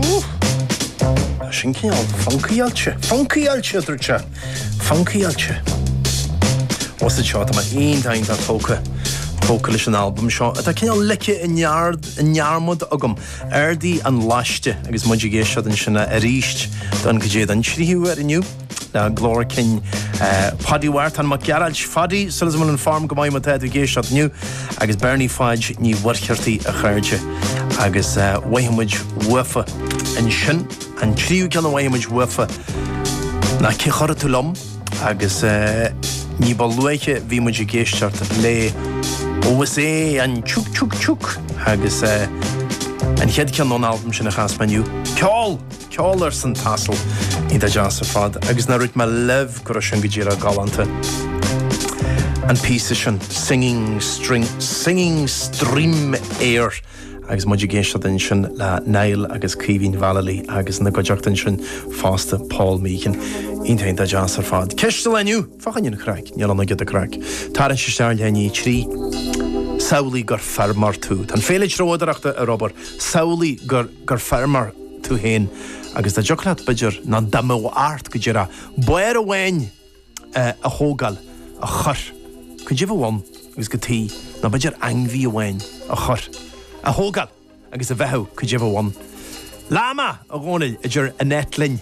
Ooh! Sin cineál funkáilte. Funkáilte a dúirt sé. Funkáilte. Os anseo tá mé iontach tógtha tógtha leis an albam seo atá cineál ligthe i ndearmad agam. Ardaigh an Laiste agus muid ag éisteacht ansin aríst don go dtí, don tríú huair inniu. Ná glór cinn Phaidí Mhárthain Mac Gearailt Phaidí súil agam go bhfuil an form go maith má tá tú ag éisteacht inniu agus Bernie Pháid Ní Mhuircheartaigh a chairde agus mhoithigh muid uafa ansin an tríú ceann a mhoithigh muid uafa ná Cé a Chuirfidh Tú Liom? agus ní ba luaithe bhí muid ag éisteacht le Ó is é an Tiuc Tiuc Tiuc agus an chéad cheann ón albam sin a chas mé inniu Ceol! ceol arsa an t-asal iontach deas ar fad agus ná rún maith leibh go raibh sin go díreach galánta an píosa sin singing singing stream air agus muid ag éisteacht ansin le Niall agus Caoimhín Vallely agus ina gcuideachta ansin fosta Paul Meehan iontach iontach deas ar fad ceist an lae inniu fá choinne craic níl ann ach giota craic tarraingt isteach le líne a trí samhlaigh gur feirmeoir tú tá an féile treoidireachta ar obair samhlaigh gur gur feirmeoir tú féin, agus dá dtiocfadh leat b'fhéidir ná dá mbeadh ort go díreach barr amháin a thógáil a chur go deo amháin agus go dtí ná b'fhéidir ainmhí amháin a chur a thógáil agus a bheathú go deo amháin. Llama a Dhónaill idir an eitleáin.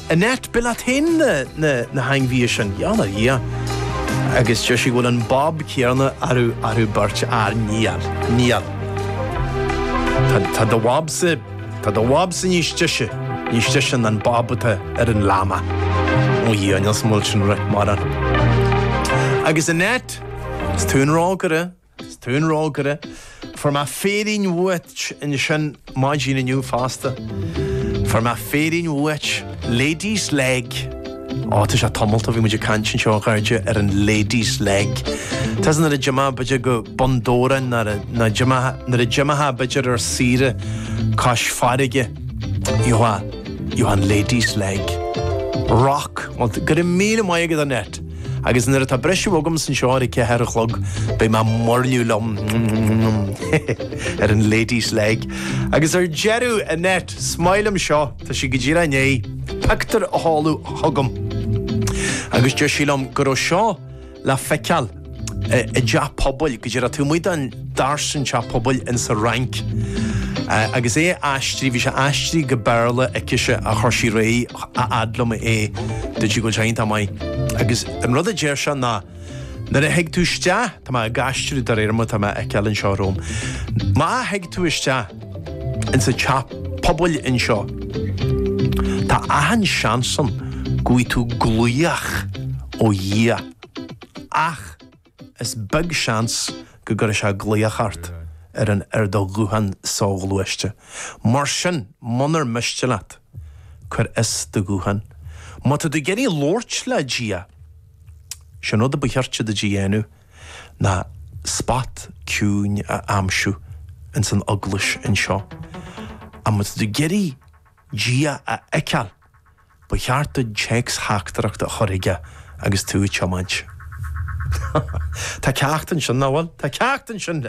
Annette b'fhéidir leat féin na hainmhithe sin. Ó a Dhia. Agus deir sí go bhfuil an bob céanna oraibh beirt fhear. Níl. Níl. Tá do bhobsa, tá do bhobsa níos deise, níos deise ná an bob atá ar an llama. Ó Dhia, níl san fhuil sin rith, mar. Agus Annette, is tú an rógaire. 'S tú an rógaire. Fuair mé féirín uait ansin maidin inniu fosta. Fuair mé féirín uait. Lady's leg. Ó, tá sé tamall ó bhí muid ag caint anseo a chairde ar an lady's leg. Tá's agat nuair a d'imeofá b'fhéidir go Bun Dobhráin nó nuair a d'imeofá b'fhéidir ar saoire cois farraige. Gheofá, gheofá an lady's leg. Rock. Bhuel, go raibh míle maith agat, Annette. Agus nuair atá briseadh agam sa seó ar a ceathair a chlog, beidh mé ag muirniú liom ar an Lady's Leg. Agus ar deireadh, Annette, is maith liom seo, tá sí go díreach i ndiaidh pictiúr a sheoladh chugam. Agus deir sí liom go raibh seo le feiceáil i dteach pobail go díreach taobh amuigh an dtarsainn teach pobail ins a' Fhrainc agus é aistrithe, bhí sé aistrithe go Béarla aicise agus chuir sí ar aghaidh a fhad liom é, dúirt sí go bhfuil sé iontach maith. Agus an rud a deir sé ná, nuair a thig tú isteach, tá mé ag aistriú de réir mar atá mé a fheiceáil anseo romham, má thig tú isteach ins a' teach pobail anseo, tá achan seans ann go bhfuigh tú glaoch ó Dhia. Ach. is beag seans go gcuirfidh sé glaoch ort ar an ar do ghuthán soghluaiste. Mar sin, munar miste leat, cuir as do ghuthán. Má tá tú ag iarraidh labhairt le Dia, is é an rud a ba chirte duit a dhéanamh ná spot ciúin a aimsiú ins an eaglais anseo. Ach má tá tú ag iarraidh Dia a fheiceáil, Ba cheart duit téacstheachtaireacht a chur chuige agus tú ag tiomáint. Tá ceacht ansin, nach bhfuil? Tá ceacht ansin!